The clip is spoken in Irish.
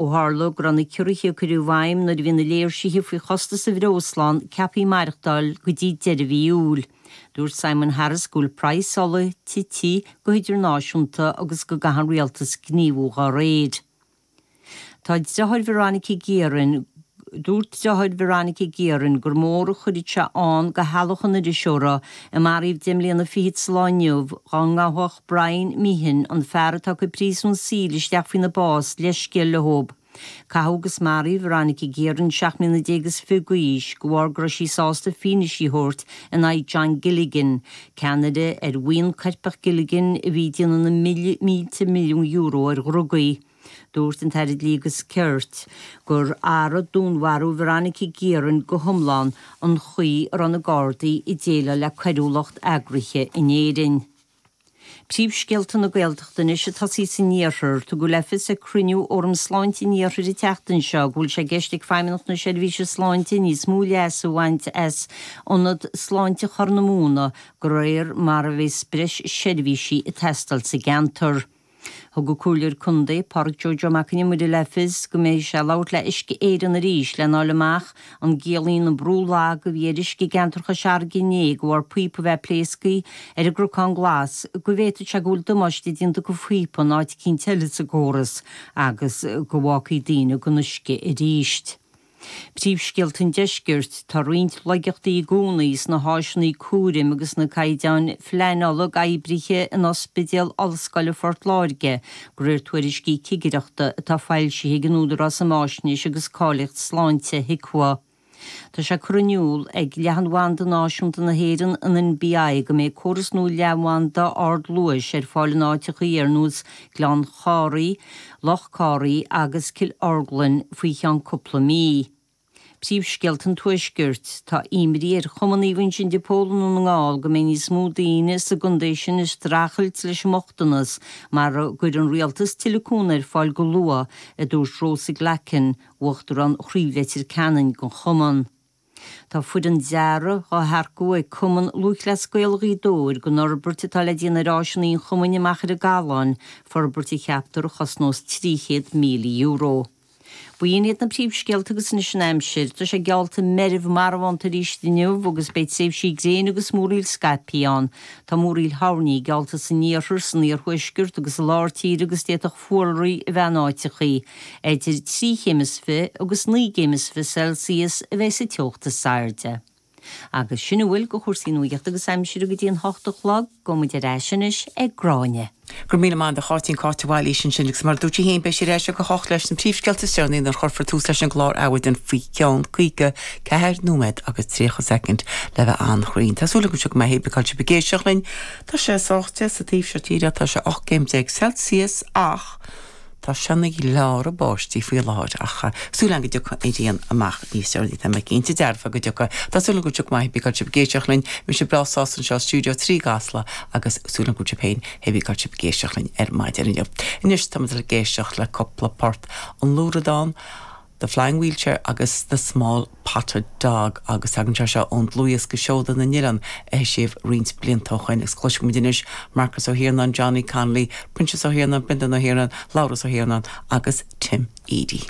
Ó tharla go raibh na ciorruithe a cuireadh i bhfeidhm nuair a bhí na léirsithe faoi chostas an bhreosla ann ceaptha maireachtáil go dtí deireadh mhí Iúil, dúirt Simon Harris go bhfuil praghas ola tite go hidirnáisiúnta agus go gcaithfidh an rialtas gníomhú dá réir. Tá driotháir Veronica Guerin Dúirt driotháir Veronica Guerin gur mór a chuirfeadh sé ann do theaghlach an iriseora, a maraíodh deich mbliana fichead sa lá inniu, dá ngabhfadh. Brian Meehan, an fear atá ag cur príosún saoil isteach faoina bás, leithscéal leo. Caitheadh agus maraíodh Veronica Guerin seacht mbliana déag is fiche d'aois de bharr go raibh sí sásta fianaise a thabhairt in aghaidh John Gilligan, ceannaire ar bhuíon coirpeach Gilligan a bhí ag déanamh na mílte milliún euro ar dhrugaí. Dúirt an tAire Dlí agus Cirt gur athraigh dúnmharú Veronica Guerin go hiomlán an chaoi a raibh na Gardaí ag déileáil le coiriúlacht eagraithe in Éirinn. Príomhscéalta na Gaeltachta anois ag tosaí san iarthar. Tugadh le fios ag cruinniú Fhóram Sláinte an Iarthair an tseachtain seo go bhfuil sé i gceist ag Feidhmeannacht na Seirbhíse Sláinte níos mó leas a bhaint as Ionad Sláinte Chorr na Móna de réir mar a bheas breis seirbhísí ag teastáil sa gceantar. Thug an Comhairleoir Contae, Pádraig Joe Joe Mac an Iomaire le fios go mbeidh sé ag labhairt le Uisce Éireann arís le fháil amach an gciallaíonn an brú lag a bhí ar uisce i gceantar Chois Fharraige inné de bharr píopa a bheith ag pléascadh ar an gCnocán Glas go bhféadfadh sé go bhfuil damáiste déanta do phíopa in áit eicínt eile sa gcóras agus go bhfágfaí daoine gan uisce arís. Príomhscéalta an Deiscirt, tá roinnt laigeachtaí i gcónaí sna háiseanna cúraim agus sna caighdeáin phleanála ag oibrithe in Ospidéal Ollscoile Phort Láirge, de réir tuairiscí cigireachta atá foilsithe ag an Údarás um Fhaisnéis agus Cáilíocht Sláinte, HIQA. Tá sé curtha in iúl ag Leathanbhanda Náisiúnta na hÉireann, an NBI, go mbeidh córas nua leathanbhanda ardluais ar fáil in áiteachaí ar nós Gleann Chárthaigh, Loch Cárthaí agus Cill Orglan faoi cheann cúpla mí. Príomhscéalta an Tuaiscirt, tá imní ar Chumann Naomh Uinseann de Pól i nDún na nGall go mbeidh níos mó daoine sa gcontae sin ag streachailt leis an mbochtanas mara gcuirfidh an rialtas tuilleadh cúnaimh ar fáil go luath, a dúirt Rosa Glackin, Uachtarán Chraobh Leitir Ceanainn den Chumann. Tá foireann dearaidh á hearcú ag Cumann Lúthchleas Gael Ghaoth Dobhair don fhorbairt atá le déanamh ar áiseanna an chumainn i Machaire Gathlán, forbairt a cheaptar a chosnós €300,000. B'in iad na príomhscéalta agus anois an aimsir. Tá sé geallta meirbh marbhánta arís inniu agus beidh tréimhsí gréine agus múraíl scaipthe ann. Tá múraíl thoirní geallta san iarthar, san iarthuaisceart agus i lár tíre agus d'fhéadfadh Báltraí a bheith in áiteachaí eidir trí chéim is fiche agus naoi gcéim is fiche Celsius a bheidh sa teocht is airde. Agus sin a bhfuil go chúrsaí nuaíochta agus aimsire go dtí an hocht a chlog, gabhfaidh muid ar ais anois ag Gráinne. Go raibh míle maith agat a Cháitín, Cáit Ní Choistealbha ansin agus mar a dúirt sí féin beidh sí ar ais ag a hocht leis na príomhscéalta is deireanaí nuair a chuirfear tús leis an gclár Adhmhaidin faoi cheann caoga ceathair nóiméad agus tríocha soicind. Le bheith an-chruinn, tá súil agamse go mbeidh sibh ag éisteacht linn. Tá sé sách te sa taobh seo tíre, tá sé 18 gcéim Celsius ach tá sé ag gleáradh báistí faoi láthair ach súil agam go dtiocfaidh an ghrian amach níos deireanaí, tá mé cinnte dearfa go dtiocfaidh. Tá súil agam go dtiocfaidh, maith, hé bí cá bhfuil sibh ag éisteacht linn, mise breá sásta anseo i stiúideo trí i gCasla agus súil agam go raibh sibh féin, hé bí cá bhfuil sibh ag éisteacht linn ar maidin inniu. Anois táimid ag dul ag éisteacht le cúpla port, An Luathradán, The Flying Wheelchair agus The Small Spotted Dog agus tagann sé seo ón dlúthdhiosca Seoda na nOileán a heisíodh roinnt blianta ó shoin agus cloisfimid anois Marcus Ó hIarnáin, Johnny Connolly, Proinsias Ó hIarnáin, Brendan Ó hIarnáin, Labhrás Ó hIarnáin agus Tim Edey.